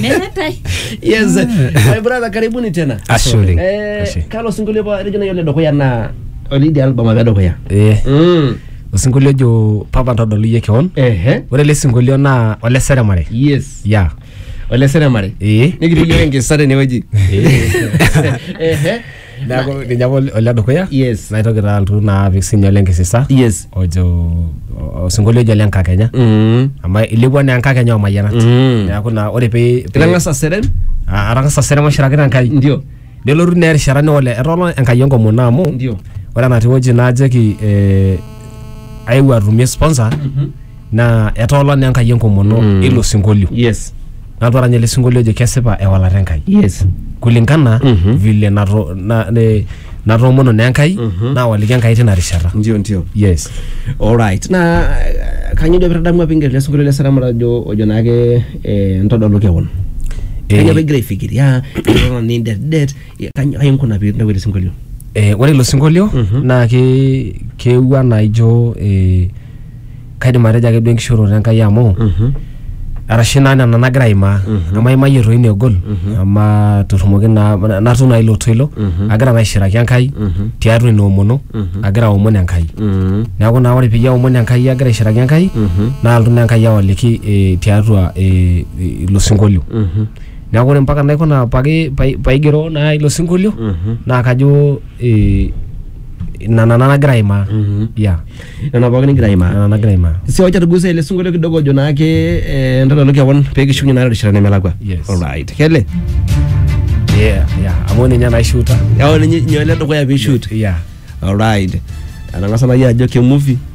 Meetae. yes my brother karibuni tena Ashe oleng. eh, Ashe. kalo sinkolio pa etejo nayiolo dukuya naa olidi album apa edukuya Eh, Mm. osinkolio ojo papa ntodolu iyie keon ehe ore ele sinkolio naa ole seremare yes ya ole seremare ee nikitii yiok enkisa tenewueji ehe neaku ninye apa ole dukuya Yes. naitoki taa altu naa apik sinye ole nkisisa Yes. ojo o- osinkolio ojo ole nkakenya Mm. amu ilepua naa enkakenya omayianat Mm. neaku naa ore pee pee- Itang'asa aseren? Ah, atang'asa serema shirakita enkai Ndio. nelotu naa erishata neole etoolo enkai enkomono amu Ndio. ore enatii wueji najoki eh, aewuo atumie sponsor naa etoola naa enkai enkomono Mm. ilo sinkolio yes nalotu arany ele sinkolio ojo kesipa ewalata enkai yes kulingana Mhm. vile nato- na- ne- natoomono naa enkai Mhm. nawaliki enkai tina rishata ndio ndio yes alright na eh, kanyio duo pitadamu apa ingero lesinkolio le sarama ojo ojo naake eh, ntodolu kewon kanyio apa igira aifikiria eton nindedet Ya, kany- kai inkuna pee intawuo ele sinkolio Eh, ore ilo sinkolio Mhm. naa ke- keewuo anaa ijo eh, kaidim atejo ake duo enkishooroto enkai amu arashu naa nena nagira aimaa Mhm. amu aimayie toi negol Mhm. ama torrumoki naa natum naa ilo toilo Mhm. agira naa aishiraki enkai Mhm. tiatua ina omono Mhm. agira aomon enkai Mhm. neeku naa ore peyie aomon enkai agira aishiraki enkai Mhm. naa altu naa enkai awaliki eh, tiatua eh, ilo sinkolio Mhm. neeku ore mpaka naikuna paki pai- paigero naa ilo sinkolio Mhm. naa kajo eh, ina nana nagira aimaa Mhm. yeah nena pookin nigira aimaa nana nagira aimaa si wacha tugusa ile sinkolio kidogo ojo naake eh, entadalo kewon pee kishukunye naa rishata nemelakua Yes. alright kele yeah yeah amu ninye naishuta yao ninye nyole dukuya pee shoot yeah alright anang'asa nai ajo ke movie